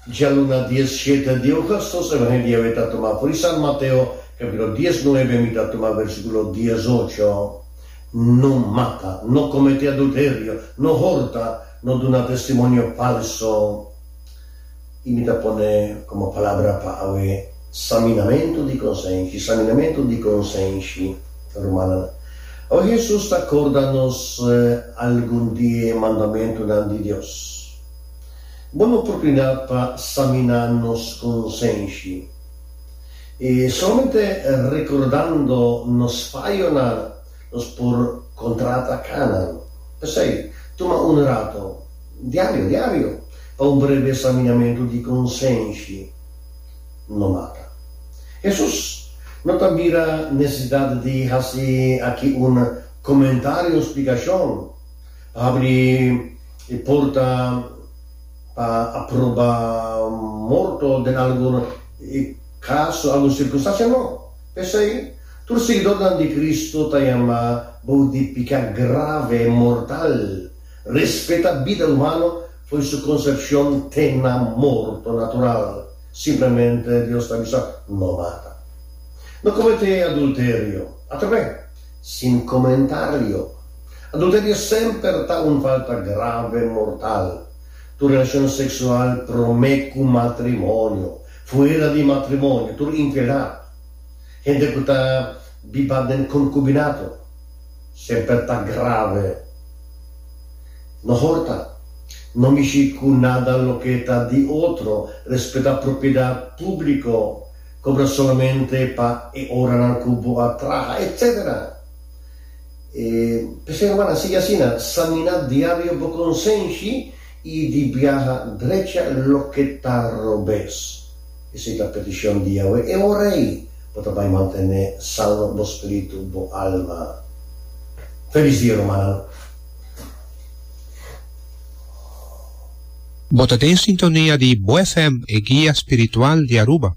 Dja luna dies shete di oga sos evangelio awe ta tuma for di Sant Mateo capitulo dies nuebe mi ta tuma versiculo dies ocho, No mata, no comete adulterio, no horta, no duna testimonio falso y mi ta pone como palabra pa awe. Saminamentu di konsenshi, Saminamentu di konsenshi, rumannan. Awe Hesus ta korda nos algun di e mandamentunan di Dios. Bon oportunidat pa saminá nos konsenshi. I solamente rekordando nos fayonan nos por kontrata kanan. P'esei, tuma un rato, diario, diario, pa un breve saminamentu di konsenshi. lo mata. Hesus no ta mira nesesidat di hasi aki un komentario, un splikashon pa habri e porta pa aproba morto den algun kaso, algun sirkunstansia. No. P'esei, tur siguidornan di Kristu ta yamá bou di piká grave, mortal, respeta bida humano. Fo'i su konsepshon te na morto natural, simplemente Dios ta bisa, No mata. No kometé adulterio. Atrap'é? Sin komentario. Adulterio semper ta un falta grave, mortal. Tur relashon seksual promé ku matrimonio, fuera di matrimonio, tur infieldad, hende ku ta biba den konkubinato, semper ta grave. Mehor ta, no mishi cu nada loke ta di otro, respeta propiedad publico, cobra solamente pa e oranan cu bo a traha, etc. E p'esei, hermana, sigui asina, samina diario bo consenshi y di biaha drecha loke ta robes. Esei ta peticion di Yahweh. E ora ei, bo ta bay mantene sano bo spiritu, bo alma. Feliz dia, rumannan. Bo ta den sintonia di Bo FM, e guia spiritual di Aruba.